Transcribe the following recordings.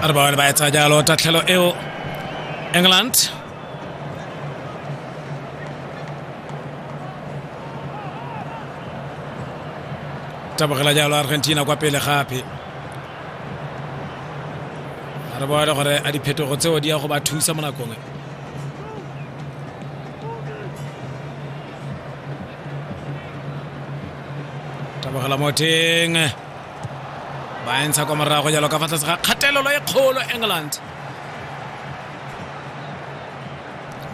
a re ba bone ba etsa jalo tatlhelo eo england tabogela jalo argentina kwa pele gape a re bone gore a diphetogo tseo di ya go ba thusa mo nakong tabogela mo teng ba e ntsha kwa morago jalo ka fa tlase ga kgatelelo e kgolo england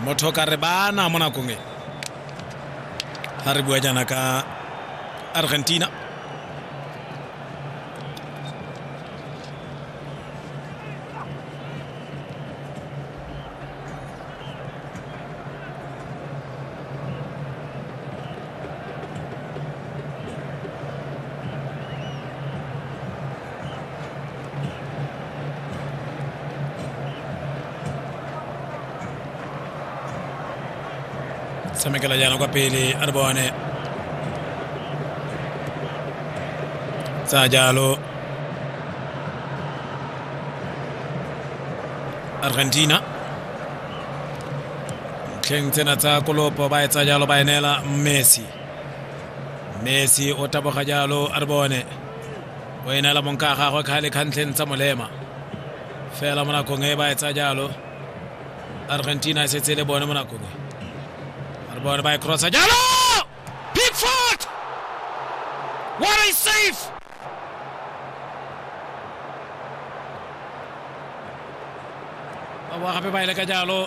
motho ka re bana mo nakong e ga re bua jaana ka argentina tshamekela jaana kwa pele a re bone tsa jalo argentina ntlheng tsena tsa kolopo ba etsa jalo ba enela messi messi o taboga jalo a re bone o enela monka a gagwe kgale kgantlheng tsa molema fela mo nakong e ba etsa jalo argentina e setse le bone mo nakong e a re bone ba e crossa jalo Pickford! What a save! ba boa gape ba e leka jalo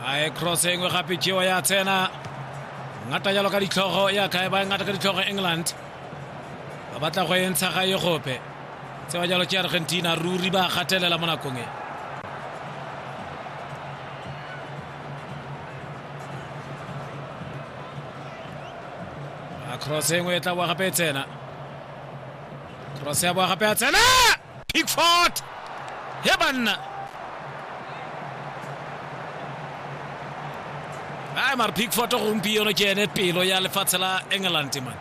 a e cross engwe gape jewa ya tsena ngata jalo ka ditlhogo ya kae ba e ngata ka ditlhogo england ba batla go e ntsha ga e gope tsewa jalo ke argentina ruri ba gatelela mo nakong e cross e nngwe e tla boa gape e tsena cross ya boa gape ya tsena pickford he banna ai mare pickford gompieno ke ene pelo ya lefatshe la england man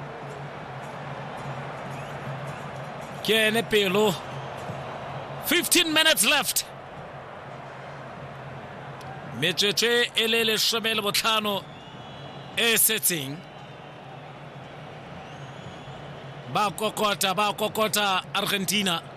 kene pelo 15 minutes left metsotso e le lesome le botlhano e setseng ba kokota ba kokota argentina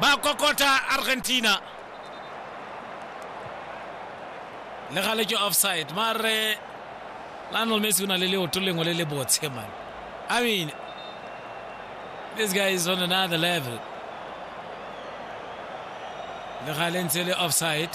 ba kokota argentina le gale ke offside mare lionel messi o na le leoto lengwe le le botshe man i mean this guy is on another level le gale ntse le offside